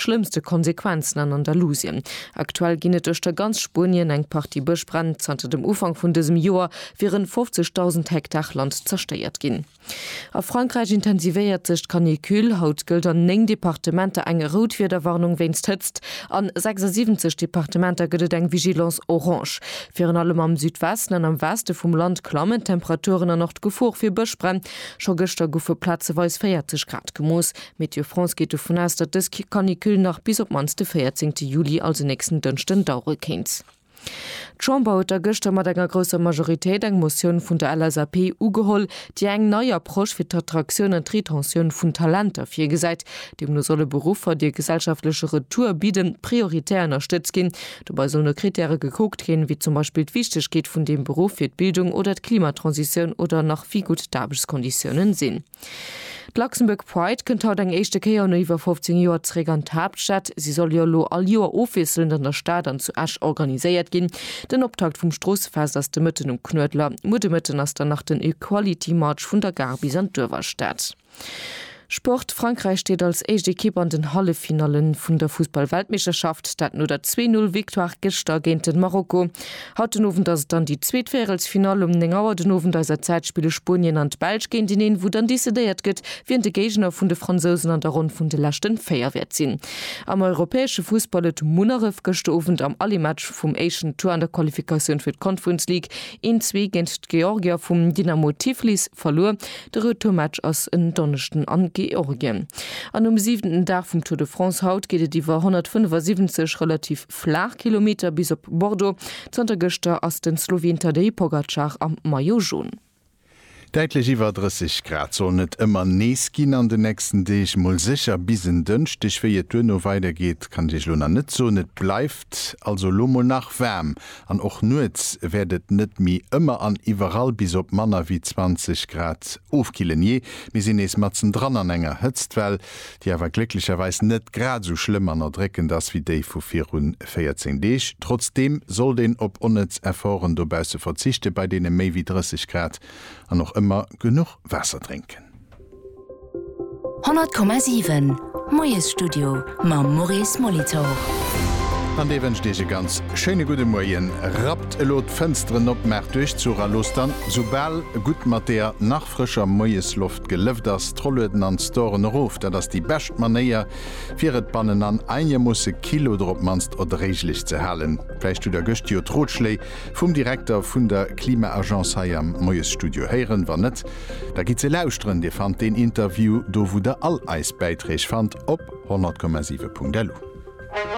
Schlëmmste Konsequenzen an Andalusien. Aktuell ginn et duerch der ganz Spuenien eng Partie Bëschbränn. Zanter dem Ufank vun dësem Joer wieren 50.000 Hektar Land zerstéiert ginn. A Frankräich intensivéiert sech d'Canicule. Haut gëllt an 9 Departementer eng Routwiederwarnung wéinst Hëtzt. An 76 Departementer gëtt et eng Vigilance orange. Virun allem am Südwesten an am Weste vum Land klammen d'Temperaturen an och d'Gefor fir Bëschbränn. Scho gëschter goufe plazeweis 40 Grad gemooss. Météo France geet dovun aus, datt dës Canicule nach bis op d'mannst de 14 Juli, also nächsten Dënschden, dauere kéint. D'Chamber huet da gëschter mat enger grousser Majoritéit eng Motioun vun der LSAP ugeholl, déi eng nei Approche fir d'Attraktioun an d'Retentioun vun Talenter virgesäit. Deemno solle Beruffer, déi e gesellschaftleche Retour bidden, prioritär ënnerstëtzt ginn. Dobei sollen no Krittäre gekuckt ginn, wéi zum Beispill d'Wichtegkeet vun deem Beruff fir d'Bildung oder d'Klimatransitioun oder nach wéi gutt d'Aarbechtskonditiounen sinn. D'Luxembourg Pride kënnt haut eng éischte Kéier no iwwer 15 Joer zeréck an d'Haaptstad. Si soll jo elo all Joer ofwiesselend an der Stad an zu Esch organiséiert ginn. Den Optakt vum Stroossefest ass de Mëtten um Knuedler. Muer de Mëtten ass dann nach den Equality March vun der Gare bis an d'Uewerstad. Sport, Frankräich steet als éischt Ekipp an den Halleffinallen vun der Fussball-Weltmeeschterschaft, dat no der Zwee-Null-Victoire gëschter géint den Marokko. Haut den Owend ass et dann déi zweet Véierelsfinall. Um 9 Auer den Owend eiser Zäit spille Spuenien an d'Belsch géinteneen, wou dann decidéiert gëtt, wien de Géigner vun de Fransousen an der Ronn vun de leschten 4 wäert sinn. Am europäesche Fussball, et Munneref gëschter Owend am Aller-Match vum éischten Tour an der Qualifikatioun fir d'Conference League een Zwee géint d'Georgier vum Dynamo Tiflis verluer. De Retourmatch ass en Donneschden an Georgien. An um siwenten Dag vum Tour de France haut geet et iwwer 175 relativ. Flaachkilometer bis op Bordeaux. Zanter gëschter ass den Sloween Tadej Pogacar am Maillot Jaune. Däitlech iwwer 30 Grad sollen et ëmmer nees ginn an den nächsten Deeg, mol sécher bis en Dënschdeg. Wéi et duerno weidergeet, kann ech iech elo nach net soen. Et bleift also elo mol nach waarm an och nuets wäert et net méi ëmmer an iwwerall bis op manner wéi 20 Grad ofkillen. Jee, mir sinn nees matzen dran an enger Hëtztwell. déi awer glécklecherweis net grad esou schlëmm an erdréckend ass wéi déi vu viru 14 Deeg. Trotzdeem sollt een op onnëtz Efforten dobausse verzichten, bei deene méi wéi 30 Grad, an och ëmmer genuch Waasser drénken. 100,7 Moiesstudio mam Maurice Molitor. An dee wënscht Iech e ganz schéine gudde Moien. Rappt elo d'Fënsteren op, maacht Duerchzuch a loosst dann, soubal gutt mat deeër nach. frëscher Moiesloft gelëft ass, d'Rollueden an d'Storen erof. Dat ass déi bescht Manéier, fir et bannen an einegermoosse kill oder op d'mannst erdréiglech ze halen. Vläicht hutt der gëscht jo d'Rotschléi vum Direkter vun der Klima-Agence hei am Moiesstudio héieren. Wann net, da gitt se lauschteren. Dir fannt deen Interview do, wou der all eis Bäiträg fannt, op 100,7.lu.